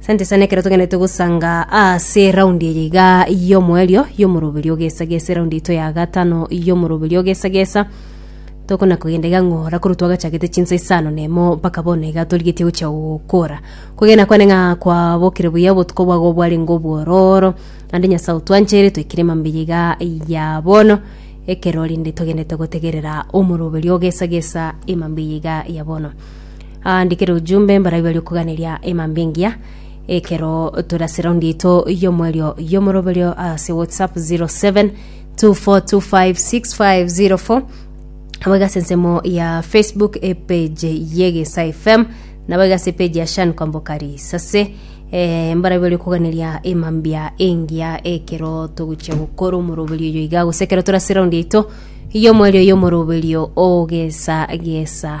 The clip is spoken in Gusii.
Sante sana ekero togenderete gosanga ase raundi eye iga y'omoerio y'omoroberi ogesa gesa eraundi yaito ya gatano y'omoroberi ogesa gesa tokona kogenda iga ng'ora korwa twagachagete chinsa isano na emo mpaka bono iga torigetie gochia gokora kogenda kwane ng'a kwabokire buya obotuko bwago bwarenge obwororo naende nyasae otwanchire twaikire emambia iga ya bono ekero rinde togenderete gotegerera omoroberi ogesa gesa emambia eye iga ya bono Aandikere ojumbe mbarabwo baria okoganeria emambe engiya ekero tore ase raundi yaito y'omoerio y'omoroberio ase whatsapp 0724256504 nabo iga ase ensemo ya facebook epage y'egesa fm nabo iga ase epage ya shan kwamboka risase eh, mbarabwo baria okoganeria emambia engiya ekero togochia gokora omoroberio oyo iga gose ekero tore ase raundi yaito y'omoerio y'omoroberio ogesa gesa